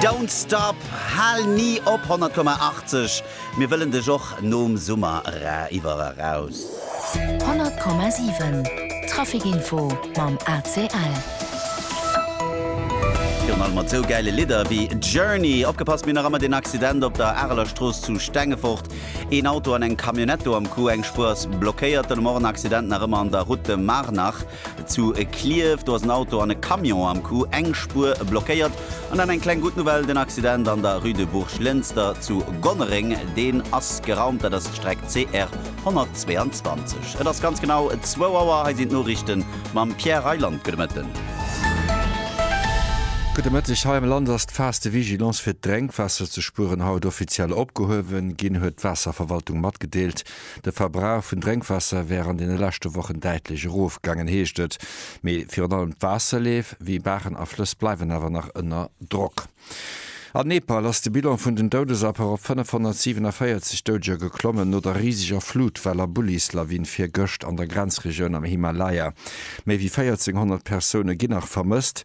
Don't stop, hal ni op 100,80, mir wëllen dech och nom Summer era iwwer eraus. 100,7 Traficinfo mam ACL. Virun allem mat sou gäile Lidder wéi Journey. Opgepasst, mir hunn nach ëmmer deen Accident op der Areler Strooss zu Stengefort. Een Auto an eng Camionnette do am Coup, eng Spuer ass blockéiert. Den Morgen Accident nach ëmmer an der Route de Marnach. Zu Klierf, do ass en Auto an e Camion am Coup, eng Spuer blockéiert. An dann eng kleng gutt Nouvelle, den Accident an der Rue de Bourg-Lënster zu Gonnereng, deen ass geraumt. Dat ass d'Streck CR 122. Et ass ganz genau zwou Auer, hei sinn d'Noriichten mam Pierre Reyland. Gudde Mëtten. Gudde Mëtteg. Hei am Land ass d'Phas de vigilance fir d'Drénkwaasser ze spueren haut offiziell opgehuewen ginn, huet d'Waasserverwaltung matgedeelt. De Verbrauch vun Drénkwaasser wär an deene leschte Wochen däitlech erofgaangen, heescht et. Mee virun allem d'Waasserleef, wéi Baachen a Flëss, bleiwen awer nach ënner Drock. An Nepal ass de Bilan vun den Doudesaffer op 547 Doudeger geklommen, no der riseger Flutwell a Bullislawin virgëscht an der Grenzregioun am Himalaya. Méi wéi 1400 Persoune ginn nach vermësst.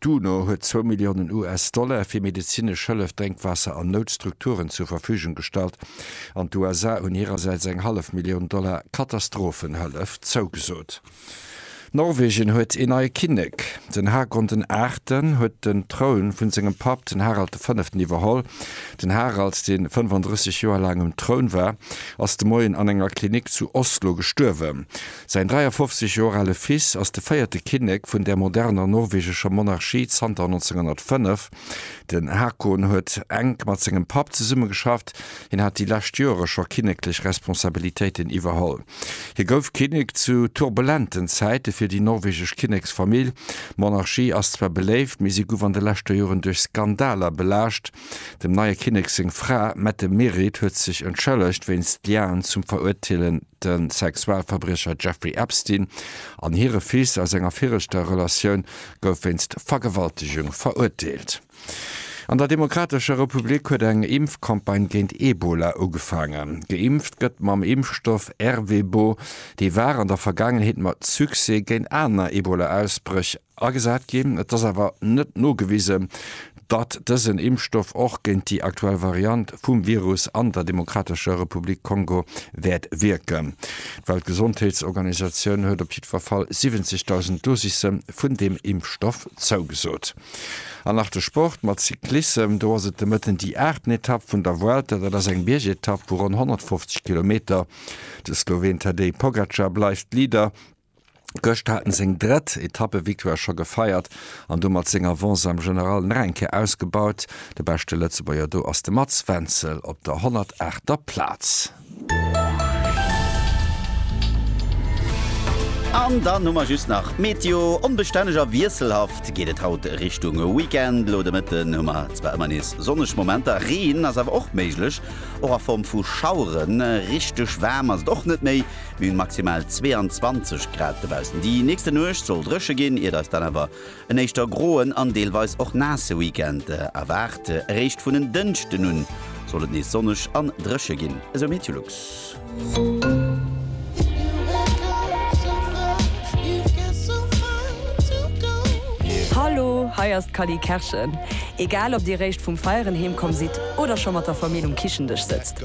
D'UNO huet zwou Milliounen US-Dollar fir medezinesch Hëllef, Drénkwaasser an Noutstrukturen zur Verfügung gestallt an d'USA hunn hirersäits eng hallef Millioun Dollar Katastrophenhëllef zougesot. Norwegen huet een neie Kinnek. Den Haakon den Aachten huet den Troun vu sengem Papp, den Harald de Fënneften, iwwerholl. Den Harald, dee 35 Joer laang um Troun war, ass de Moien an enger Klinik zu Oslo gestuerwen. Säin 53 Joer ale Fils ass de véierte Kinnek vun der moderner norwegescher Monarchie zanter 1905. Den Haakon huet enk mat sengem Papp zesummegeschafft, hien hat déi lescht Joere scho kinneklech Responsabilitéiten iwwerholl. Hie gouf Kinnek zu turbulenten Zäite fir déi norwegesch Kinneksfamill. D'Monarchie ass zwar beléift, mee si guff an de leschter Joeren duerch Skandaler belaascht. Dem neie Kinnek seng Fra Mette-Merit huet sech entschëllegt wéinst Liaen zum Verurteelen. De Sexualverbriecher Jeffrey Epstein an hire Fils aus enger viregter Relatioun gouf wéinst Vergewaltegung verurteelt. An der Demokratescher Republik huet eng Impfcampagne géint Ebola ugefaangen. Geimpft gëtt mam Impfstoff Ervebo, dee war an der Vergaangenheet mat Succès géint aner Ebola-Ausbréch Agesat ginn. Et ass awer net nogewisen, datt dësen Impfstoff och géint déi aktuell Variant vum Virus an der Demokratescher Republik Kongo wäert wierken. D'Weltgesondheetsorganisatioun huet op jiddwer Fall 70.000 Dosisse vun deem Impfstoff zougesot. An nach de Sport mat Cyclissem. Do ass et de Mëtten déi aachten Etapp vun der Vuelta. Dat ass eng Biergetapp vu ronn 150 Kilometer. De Sloween Tadej Pogacar bleift Leader. Gëscht hat en seng drëtt Etappe-Victoire scho gefeiert an domat seng Avance am General nach eng Kéier ausgebaut. De beschte Lëtzebuerger do ass de Mats Wenzel op der 108. er Plaz. An dann hu mer just nach d'Meteo. Onbestänneg a wiesselhaft geet et haut Richtung Weekend. Elo de Mëtten hu mer zwar ëmmer nees sonneg Momenter, Reen ass awer och méiglech, och a Form vu Schaueren. Richteg waarm ass et och net méi, D'Bühn maximal 22 Grad dobaussen. Déi nächste Nuecht soll dréche ginn, iert eis dann awer en éischter groen an deelweis och naasse Weekend erwaart. Eréischt vun en Dënschden un soll et nees sonneg an dréche ginn, esou Meteolux. Hallo, hei ass d'Cally Kerschen. Egal ob Dir réischt vum Feieren heemkomm sidd oder scho mat der Famill um Kichendësch sëtzt,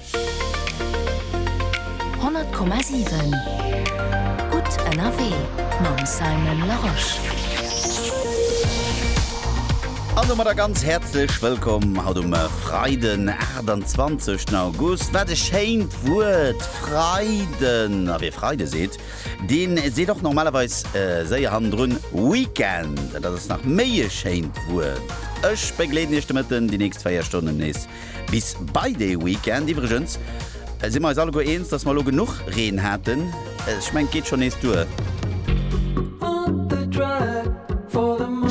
Honnert Komma siwen, gutt ënnerwee mam Simon Larosche. An domadder e ganz häerzlech Wëllkomm haut um Freiden, 28 August. Wat e schéint Wuert, Freiden! A wee Freide seet, dee seet och normalerweis séier hannendrun Weekend. Dat ass nach méi e schéint Wuert. Ech begleeden Iech de Mëtten déi nächst 4 Stonnen nees. Bis bei dee Weekend iwwregens si mer eis alleguer eens, dass mer elo genuch Reen haten. Ech mengen, d'geet schonn nees duer.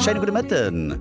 Schéine gudde Mëtten.